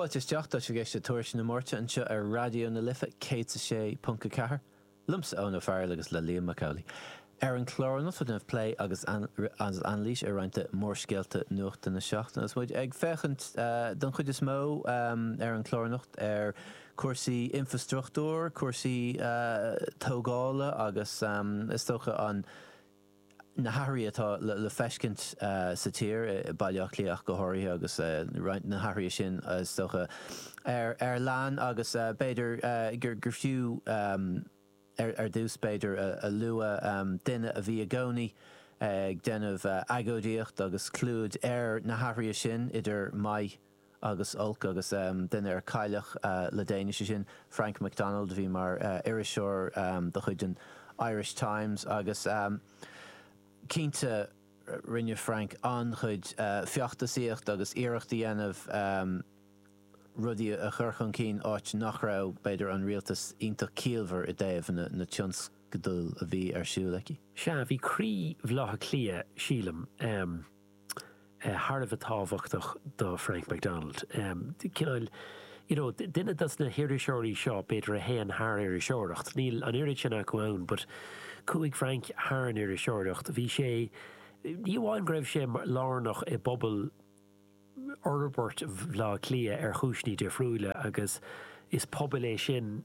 Fáilte isteach, tá sibh ag éisteacht le Tuairisc na Máirte anseo ar Raidió na Life 106.4, liomsa Eoin Ó Fearghail agus le Liam Mac Amhlaigh. Ar an chlár anocht beidh roinnt plé agus anailís ar roinnt de mhórscéalta nuachta na seachtaine agus muid ag féachaint don chuid is mó ar an chlár anocht ar chúrsaí infrastruchtúir, cúrsaí tógála agus is dócha an na hathruithe atá le feiscint sa tír, i Baile Átha Cliath ach go háirithe agus roinnt de na hathruithe sin is dócha ar leith agus b'fhéidir gur fiú ar dtús b'fhéidir a lua duine a bhí i gcónaí ag déanamh agóidíocht agus clúid ar na hathruithe sin idir maith agus olc agus duine a cailleadh le déanaí, sé sin Frank McDonald a bhí mar iriseoir de chuid an Irish Times agus cinnte rinne Frank an-chuid feachtasaíocht agus iarracht a dhéanamh rudaí a chur chun cinn áit nach raibh b'fhéidir an Rialtas iontach ciallmhar i dtaobh na tionscadail a bhí ar siúl acu. Sea, bhí croí Bhaile Átha Cliath, sílim, thar a bheith tábhachtach do Frank McDonald. Cineál, you know, duine dos na hiriseoirí seo b'fhéidir a théann thar iriseoireacht. Níl an oiread sin acu ann but chuaigh Frank thar an iriseoireacht. Bhí sé, ní amháin go raibh sé lárnach i bpobal fhorbairt Bhleá Cliath ar chúiseanna difriúla agus is pobal é sin,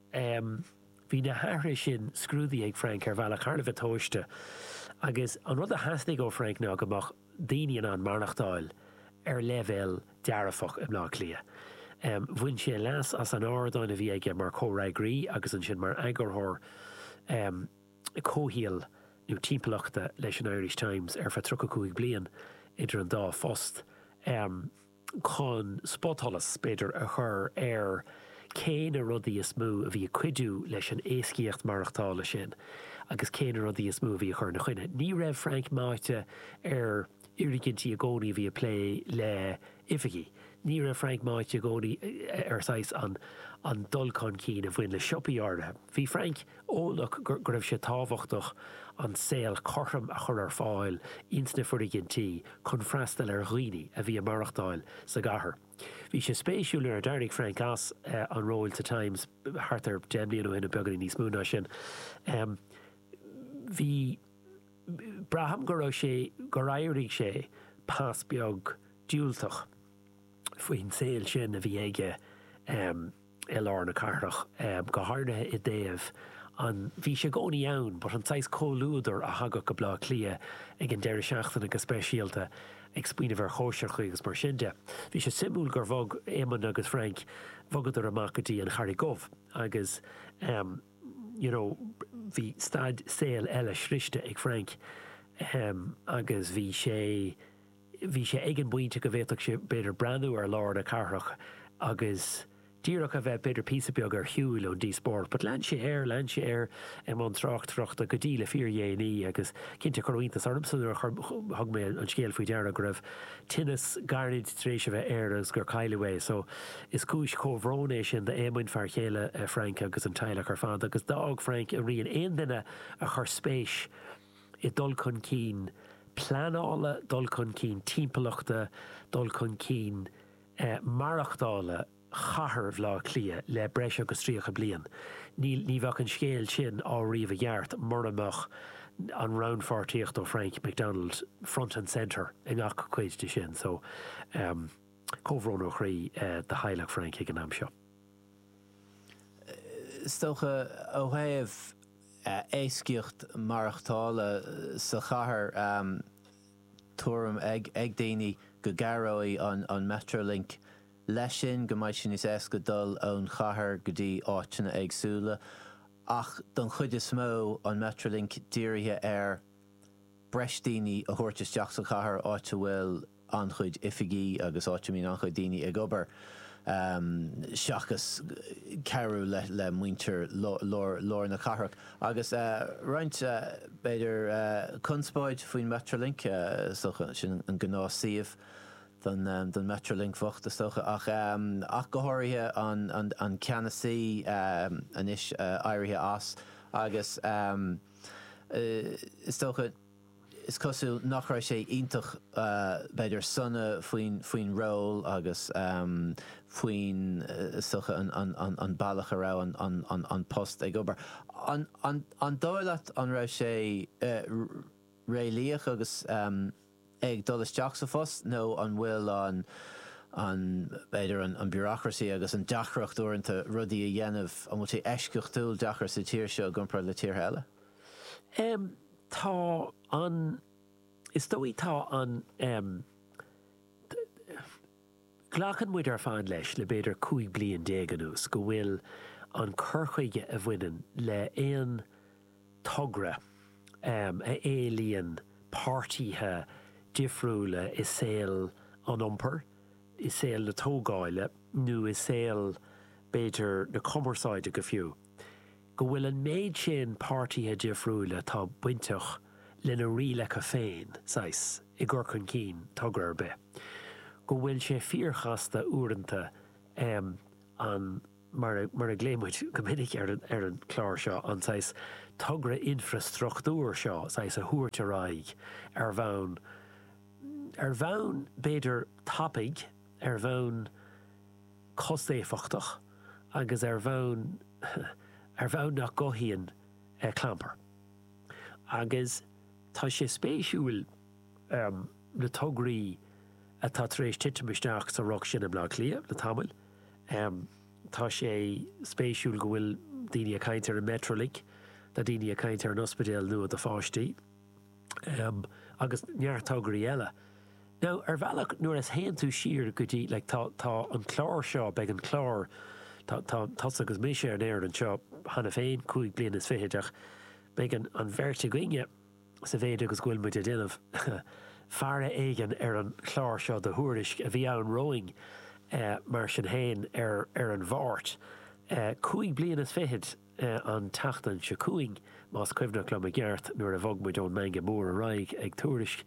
em. bhí na hathruithe sin scrúdaithe ag Frank ar bhealach thar a bheith tomhaiste agus an rud a theastaigh ó Frank ná go mbeadh daoine in ann maireachtáil ar leibhéal dearfach i mBleá Cliath. Em. bhain sé leas as an ardán a bhí aige mar chomhfhreagraí agus ansin mar eagarthóir em. comhshaoil nó timpeallachta leis an Irish Times ar feadh tríocha cúig bliain idir an dá phost. Em. chun spotsholas, b'fhéidir, a chur ar cé na rudaí is mó a bhí ag cuidiú leis an éascaíocht maireachtála sin agus cé na rudaí is mó a bhí ag cur ina choinne. Ní raibh Frank meáite ar fhoirgintí i gcónaí a bhí ag plé le oifigí. Ní raibh Frank meáite i gcónaí ar saghas an dul chun cinn a bhain le siopaí áirithe. Bhí Frank. Eolach go raibh sé tábhachtach an saol cothrom a chur ar fáil ins na foirgintí chun freastal ar dhaoine a bhí ag maireachtáil sa gcathair. Bhí sé spéisiúil nuair a d'éirigh Frank as an ról sa Times thart ar deich mbliana ó shin nó beagáinín níos mó ná sin bhí braithim go raibh sé gur éirigh sé pas beag diúltach faoin saol sin a bhí aige. i lár na cathrach, go háirithe i dtaobh an bhí sé i gcónaí ann but an saghas comhluadar a thagadh go Bleá Cliath ag an deireadh seachtaine go speisialta ag smaoineamh ar chóisireacha agus mar sin de. Bhí sé suimiúil gur bhog Éamonn agus Frank, bhogadar amach go dtí an Charraig Dhubh agus em you know bhí staid, saol eile sroichte ag Frank em agus bhí sé, bhí sé ag an bpointe go bhféadfadh sé b'fhéidir breathnú ar lár na cathrach agus díreach a bheith b'fhéidir píosa beag ar shiúl ón díospóireacht but lean sé air, lean sé air i mbun tráchtaireachta go dtí le fíordhéanaí agus cinnte cuireadh iontas ormsa nuair a chuir, thug mé an scéal faoi deara go raibh tinneas gairid tar éis a bheith air agus gur cailleadh é so is cúis chomhbhróin é sin d'Éamonn, fear chéile Frank agus an teaghlach ar fad agus d'fhág Frank a rian. Aon duine a chuir spéis i dul chun cinn pleanála, dul chun cinn timpeallachta, dul chun cinn maireachtála chathair Bhaile Átha Cliath le breis agus 30 bliain. Ní bheadh an scéal sin á ríomh i gceart mura mbeadh an rannpháirtíocht ó Frank McDonald front and centre i ngach cuid de sin. So comhbhrón ó chroí do theaghlach Frank ag an am seo. Is dócha ó thaobh. éascaíocht maireachtála sa chathair tuairim ag daoine go gcabhróidh an Metrolink leis sin, go mbeidh sé níos éasca dul ón chathair go dtí áiteanna éagsúla. Ach don chuid is mó an Metrolink dírithe ar breis daoine a thabhairt isteach sa chathair, áit a bhfuil. an-chuid oifigí agus áit a mbíonn an-chuid daoine ag obair seachas cabhrú le muintir lár na cathrach. Agus roinnt, b'fhéidir, conspóid faoin Metrolink, is dócha. Sin an gnáthshuíomh don Metrolink bhocht, is dócha. Ach go háirithe an ceannasaí anois éirithe as agus is dócha, Is cosúil nach raibh sé iontach, b'fhéidir, sona faoin ról agus faoin, soche, an bealach a raibh an post ag obair. An dóigh leat an raibh sé réalaíoch agus é ag dul isteach sa phost nó an bhfuil an, b'fhéidir, an bureaucracy agus an deacracht uaireanta rudaí a dhéanamh, an bhfuil sé eisceachtúil deacair sa tír seo i gcomparáid le tíortha eile? Tá an, is dóigh tá an ehm, glacann muid ar fad leis le b'fhéidir 15 bliain anuas go bhfuil an cur chuige a bhaineann le aon togra ehm a éilíonn páirtíthe difriúla i saol an iompair, i saol na tógáile nó i saol b'fhéidir na cumarsáide go fiú. go bhfuil an méid sin páirtíthe difriúil atá bainteach lena rialacha féin, saghas, i gcur chun cinn togra ar bith, go bhfuil sé fíorchasta uaireanta em an, mar a, mar a ghlaoigh muid go minic ar an, ar an chlár seo, an saghas togra infreastruchtúir seo, saghas, a thabhairt ar aghaidh ar bhonn, ar bhonn b'fhéidir tapaidh, ar bhonn. costéifeachtach agus ar bhonn, ar bhonn nach gcothaíonn clampar. Agus tá sé spéisiúil na tograí atá tar éis titim isteach sa ruc sin i mBleá Cliath le tamall. Tá sé spéisiúil go bhfuil daoine ag caint ar an Metrolink, tá daoine ag caint ar an ospidéal nua do pháistí. agus neart tograí eile. Now, ar bhealach, nuair a théann tú siar go dtí, like, tá, tá an clár seo, beidh an clár, tá, tá tusa agus mise ar an aer anseo cheana féin, cúig bliana is fichid, ach beidh an, an bheirt againne, sa mhéid agus go bhfuil muid a' déanamh faire éigin ar an chlár seo do thuairisc a bhí ann romhainn, eh, mar sin fhéin, ar, ar an Mháirt, eh, cúig bliana is fichid. an tseachtain seo chugainn, más cuimhneach liom i gceart, nuair a bhog muid ón mBanna Mór ar aghaidh ag Tuairisc.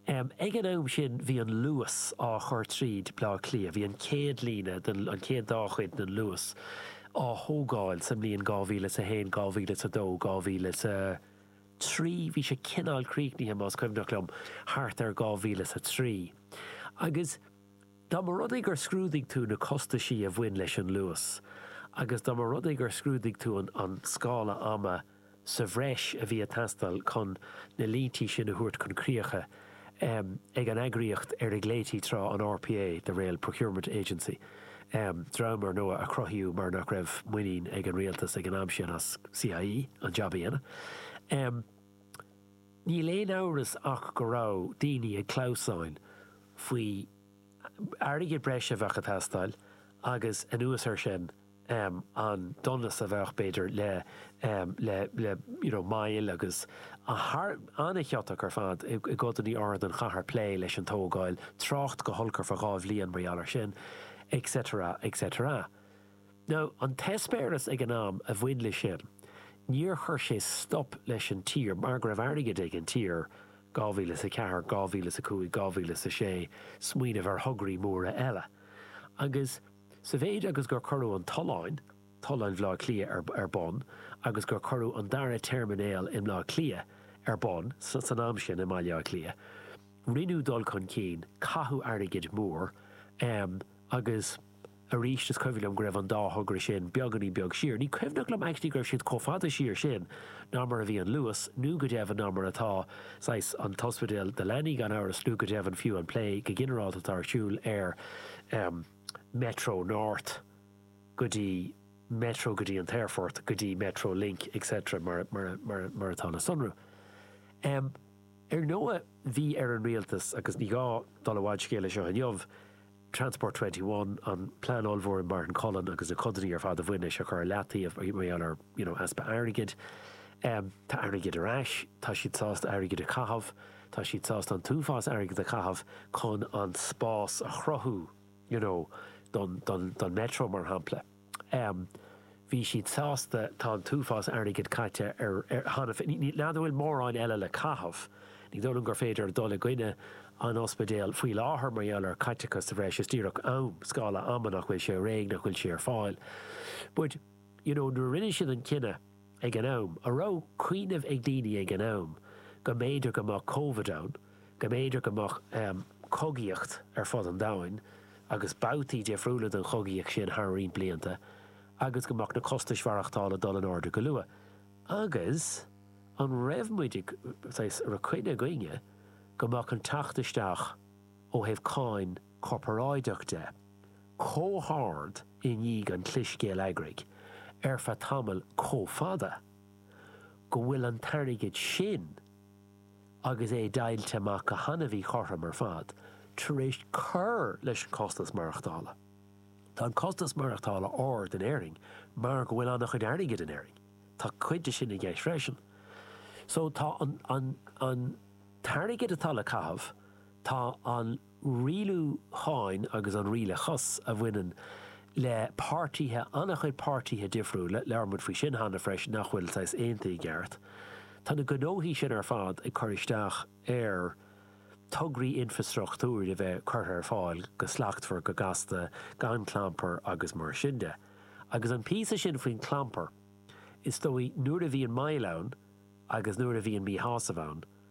Ag an am sin bhí an Luas á chur tríd Bleá Cliath. Bhí an chéad líne den, an chéad dá chuid den Luas á thógáil sa mbliain 2000 is a haon, 2000 is a dó, 2000 is a trí. Bhí sé cineál críochnaithe, más cuimhneach liom, thart ar 2000 is a trí. Agus. Dá mba rud é gur scrúdaigh tú na costaisí a bhain leis an luas agus dá mba rud é gur scrúdaigh tú an scála ama sa bhreis a bhí ag teastáil chun na líntí sin a thabhairt chun críocha ag an eagraíocht ar a ghlaoití tráth an RPA, the Rail Procurement Agency, dream ar ndóigh a cruthaíodh mar nach raibh muinín ag an Rialtas ag an am sin as CIE an jab a dhéanamh. Níl aon amhras ach go raibh daoine ag clamhsán faoi airgead breise a bheadh ag teastáil agus anuas ar sin an donas a bheadh, b'fhéidir, le you know moill agus an-chiotach ar fad i gcodanna áirid den chathair plé leis an tógáil, trácht go holc ar feadh dhá bhliain mar gheall ar sin et cetera et cetera. Now, an t-eispéireas ag an am a bhain le sin, níor chuir sé stop leis an tír mar go raibh airgead ag an tír, 2004, 2005, 2006, smaoineamh ar thograí móra eile. Agus sa mhéid agus gur cuireadh an tollán, tollán Bhleá Cliath ar, ar bun agus gur cuireadh an dara teirminéal i mBleá Cliath ar bun, sa, san am sin i mBaile Átha Cliath, rinneadh dul chun cinn, caitheadh airgead mór, em, agus. Aríst is cuimhin liom go raibh an dá thogra sin beagáinín beag siar. Ní cuimhin liom actually go raibh siad chomh fada siar sin ná mar a bhí an Luas, nó go deimhin ná mar atá saghas an t-ospidéal do leanaí gan amhras nó go deimhin fiú an plé go ginearálta atá ar siúl ar em Metro North go dtí Metro go dtí an t-aerfort go dtí Metro Link etc mar a mar a mar a mar atá le sonrú. Em Ar ndóigh bhí ar an Rialtas agus ní gá dul i bhfad scéil seo inniu, Transport Twenty One, an plean ollmhór ag Martin Cullen agus na codanna ar fad a bhain leis a chur ar leataobh mar gheall ar, you know, easpa airgid. Tá airgead ar ais, tá siad sásta airgead a chaitheamh, tá siad sásta an t-uafás airgid a chaitheamh chun an spás a chruthú, you know, don, don, don Metro mar shampla. em. bhí siad sásta, tá an t-uafás airgid caite ar, ar, cheana féin, ní, nach bhfuil mórán eile le caitheamh, ní dóigh liom gur féidir dul i gcoinne an ospidéil faoi láthair mar gheall ar chaiteachas sa bhreis, is díreach am, scála ama nach bhfuil sé réidh, nach bhfuil sé ar fáil. But, you know, nuair a rinne siad an cinneadh, ag an am, an raibh cuimhneamh ag daoine ag an am go mb'fhéidir go mbeadh Covid ann, go mb'fhéidir go mbeadh cogaíocht ar fud an domhain agus babhtaí difriúla den chogaíocht sin thar roinnt blianta agus go mbeadh na costais mhaireachtála ag dul in airde go luath. Agus an raibh muid ag, saghas, an raibh coinne againne go mbeadh an teacht isteach ó thaobh cáin, corparáideach de, chomh hard i ndiaidh an chliseadh eacnamaíoch ar feadh tamaill chomh fada go bhfuil an t-airgead sin agus é deighilte amach go han-mhíchothrom ar fad tar éis cur leis an costas maireachtála. Tá an costas maireachtála ard in Éirinn mar go bhfuil an-chuid airgid in Éirinn. Tá cuid de sin i gceist freisin. So tá an t-airgead atá le caitheamh, tá an. rialúcháin agus an rialachas a bhaineann le páirtithe, an-chuid páirtithe difriúla, labhair muid faoi sin cheana freisin, nach bhfuil saghas aontaithe i gceart. Tá na gnóthaí sin ar fad ag cur isteach ar thograí infrastruchtúir a bheith curtha ar fáil go slachtmhar, go gasta, gan clampar agus mar sin de. Agus an píosa sin faoin chlampar, is dóigh nuair a bhíonn moill ann agus nuair a bhíonn míshásamh ann,